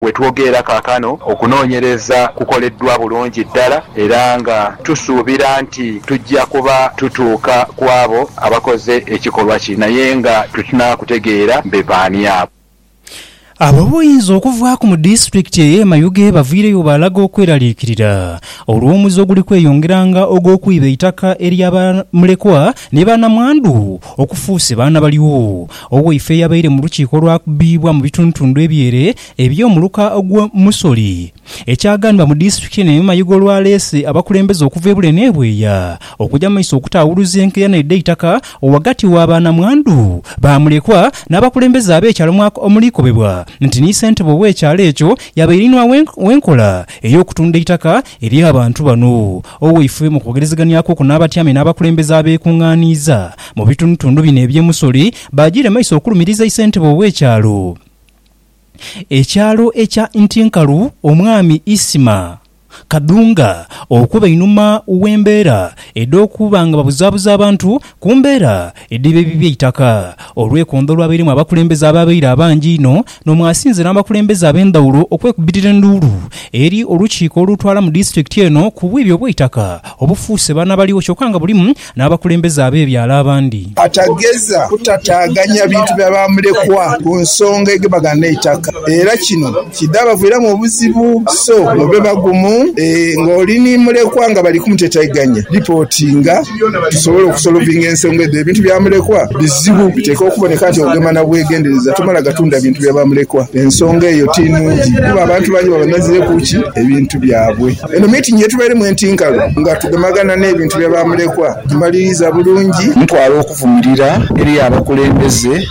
We twogeera kaakano, okunoonyereza kukoleddwa bulungi ddala era nga tusuubira nti tujja kuba tutuuka ku abo abakoze ekikolwa kino. Aye nga tutnaa kutegeera be baani abo. Ab'obuyinza okuvaaku mu disitulikiti ey'e Mayuge bavaireyo baalaga okweraliikirira olw'omuze oguli kweyongeranga ogw'okwiba eitaka ery'abamulekwa ni banamwandu okufuuse baana balyo. Owaife yabaire mu lukiiko olwakubibwa mu bitundutundu ebyere eby'omuluka ogw'e Musori. Ekyaganibwa mu disitulikiti eno ey'omu mayiga olwaleese abakulembeze okuva ebule n'ebweya okuja mu maiso okutaawuluza enkeera n'edheitaka ghagati wa ba namwandu, ba mulekwa n'abakulembeze ab'ekyalo mwako omulikobebwa nti ni ssentebe ow'ekyalo ekyo yabaire inhwa w'enkola ey'okutunda eitaka Eri abantu bano, owaifube mu kwogerezeganyaku okwo n'abatyami n'abakulembeze abeekungaaniiza mu bitundutundu bino eby'e Musori baajiire maiso okulumiriza isentebe ow'ekyalo ekyalo ekya Ntinkalu Omwami Isma Kadunga okuba einhuma w'embeera edh'okuba nga babuzaabuza abantu ku mbeera Ediba ebibi eitaka, olwekondho olwabairemu abakulembeze abaabaire abangi einho n'omwasinze n'abakulembeze ab'endhawulo okwekubitira enduulu eri olukiiko olutwala mu disitulikiti eno ku bwibi obw'eitaka obufuuse bano abaliwo kyokka nga bulimu n'abakulembeze ab'ebyalo abandi. Atageza kutataaganya bintu bya bamulekwa ku nsonga egebagana n'eitaka era kino Kidhabaviiramu obuzibu so mube bagumu. Ng'oli ni mulekwa nga bali kumutetaiganya, lipootinga tusobole okusolovinga ensonga edho. Ebintu bya mulekwa bizibu, biteekwa okuboneka nti ogema na bwegendereza, tomala gatunda bintu bya ba mulekwa. Ensonga eyo ti nungi kuba abantu bangi baba bazireku ki? Ebintu byabwe. Eno miitingi ye tubairemu enti nkalu nga tugemagana n'ebintu bya ba mulekwa, tugimaliriza bulungi. Ntwala okuvumirira eri abakulembeze.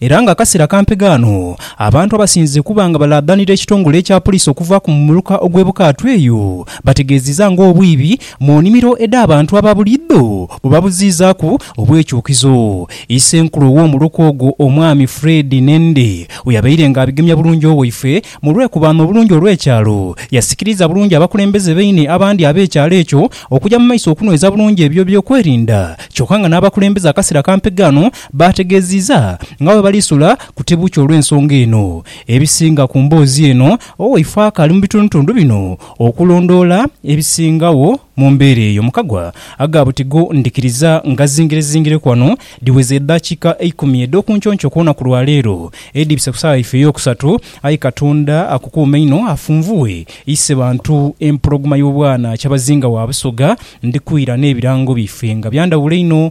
Era nga akasera kampi ghano abantu abasinze okuba nga balaadhanira ekitongole ekya Poliisi okuvaaku mu muluka ogw'e Bukaatu eyo bategeeziza nga obwibi mu nimiro edh'abantu aba buliidho bwebabuziizaaku obwekyukizo Isenkulu ow'omuluka ogwo Omwami Fred Nende weyabaire nga abigemya bulungi Owaife mu lwekubaano obulungi olw'ekyalo yasikiriza bulungi abakulembeze baine abandi ab'ekyalo ekyo okugya mu maiso okunweza bulungi ebyo eby'okwerinda kyoka nga n'abakulembeze akasera kampi ghano Baategeeziiza nga bwe bali sula ku tebukya olw'ensonga eno. Ebisinga ku mboozi eno owaifo akaali mu bitundutundu bino okulondoola ebisingagho mu mbeera eyo mu kagwa aga butigo ndhikiriza ngazingirezingireku ghano dhiweza edhakiika eikumi edh'okunconco ku lunaku lwa leero edhibise ku saawa yaife ey'okusatu aye Katonda akukuume inho afunvughe ise bantu empologoma y'obwana Kyabazinga wa Busoga ndhikwira n'ebirango byaife nga byandhawulo inho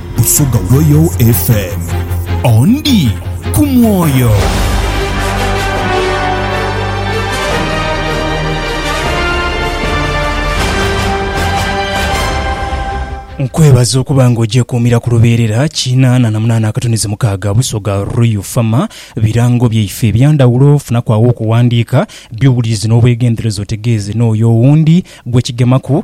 Busoga Royal FM. Ondi ku mwoyo. Nkwebaza okuba nga ogyekuumira ku lubeerera kinaana na munaana akatunizi mukaaga Busoga Royal Fama. Birango byaife ebya ndhawulo, funaku agho okuwandiika by'owulirizi n'obwegendereza otegeeze n'oyo owundi gwe kigemaku.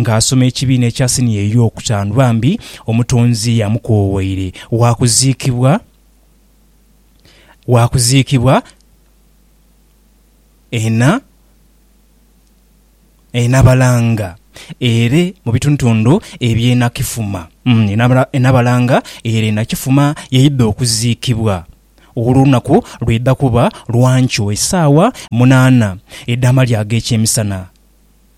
Nga asoma ekibiina ekya siniya ey'okutaanu, bambi Omutonzi yamukoowaire. Waakuziikibwa, waakuziikibwa ena, e Nabalanga ere mu bitundutundu eby'e Nakifuma. E Nabalanga ere e Nakifuma yaidha okuziikibwa. Olwo olunaku lwaidha kuba lwa nkyo esaawa munaana edh'amalya ag'ekyemisana.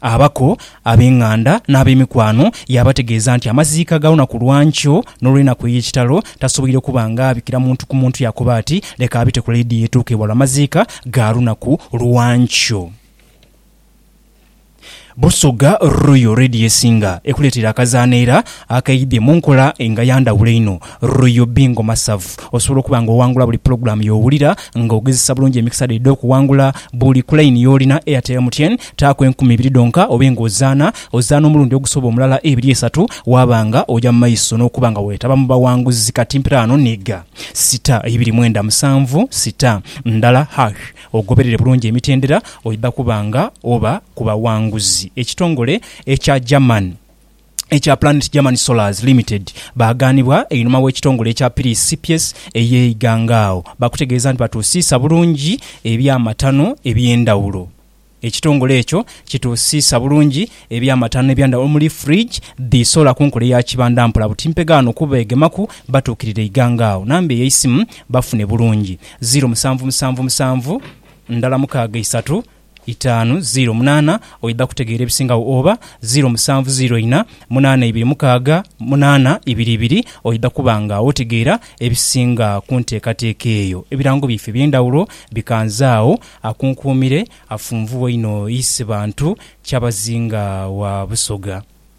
Abaku ab'enganda n'ab'emikwano yaabategeeza nti amaziika ga lunaku lwa nkyo n'olw'enaku ey'ekitalo tasoboire kuba ng'abikira muntu ku muntu yaakoba ati, Leka abite ku Lady Yetuuke bwa lwa maziika ga lunaku lwa nkyo. Busoga Royal Lady y'esinga ekuleetera akazaano era akaidhye mu nkola nga ya ndhawulo einho. Royal Bingo Masavu. Osobola okuba nga owangula buli pulogulaamu y'owulira nga ogezesa bulungi emikisa dho edh'okuwangula buli ku layini y'olina, Airtel, MTN, taaku enkumi ibiri dhonka obe nga ozaana ozaana omulundi ogusoba omulala ebiri esatu waaba nga oja mu maiso n'okuba nga weetaba mu bawanguzi kati mpiraano nhiga sita ibiri mwenda musanvu sita ndala hash ogoberere bulungi emitendera oidha kuba nga oba ku bawanguzi. Ekitongole ekya German. ekya Planet German Solars Limited baagaanibwa einhuma w'ekitongole ekya Piris Cps ey'e Iganga agho baakutegeeza nti batuusiisa bulungi eby'amatano eby'endhawulo. Ekitongole ekyo kituusiisa bulungi eby'amatano eby'endhawulo omuli fridge dhi solar ku nkola eya kibanda mpola buti mpegha ghano ku beegemaku batuukirire Iganga agho. Namba ey'eisimu bafune bulungi, ziiro musanvu musanvu musanvu ndhala mukaaga isatu itaanu ziiro munaana oidha kutegeera ebisingagho oba ziiro musanvu ziiro ina munaana ibiri mukaaga munaana ibiri ibiri oidha kuba nga otegeera ebisinga ku nteekateeka eyo. Ebirango byaife eby'endhawulo bikanzaagho akunkuumire afunvu waine oise bantu kyabazinga wa Busoga.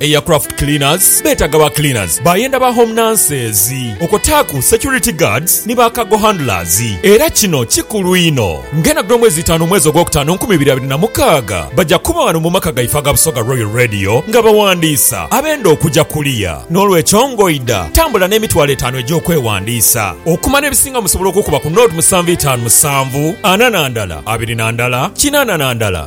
Eya craft cleaners betaga ba cleaners bayenda ba home nurses okwotaaku security guards ni ba cargo handlers era kino kikulu inho nga enagula omwezi itaanu omwezi ogwokutaano nkumi ibiri abiri na mukaaga baja kuba wano mu maka gaife aga Busoga Royal Radio nga bawandiisa abenda okuja kuliya nolwekyo ngoida tambula nemitwalo etaanu egyokwewandiisa okumanya ebisinga musobola okukuba ku nought musanvu itaanu musanvu ana na ndala abiri na ndala kinaana na ndala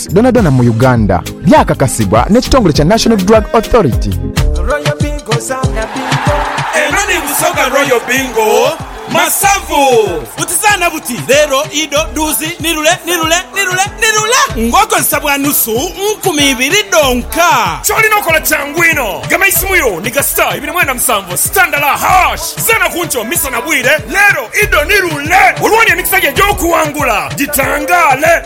Dhonadhona mu Uganda, byakakasibwa n'ekitongole kya National Drug Authority. Royal Bingo zaana bingo. Eno ni Busoga Royal Bingo Masavu. Buti zaana buti, leero, ido, dhuuzi, ni lule, ni lule, ni lule, ni lule ng'okozesa bwa nusu nkumi ibiri dhonka. Ky'olina okola kyangu inho. Gema eisimu yo ni ga star ibiri mwenda musanvu star ndala hash. Zaana ku nkyo, misana, bwire, leero, ido, ni lule. Olwooni emikisa gyo egy'okuwangula gitangaale.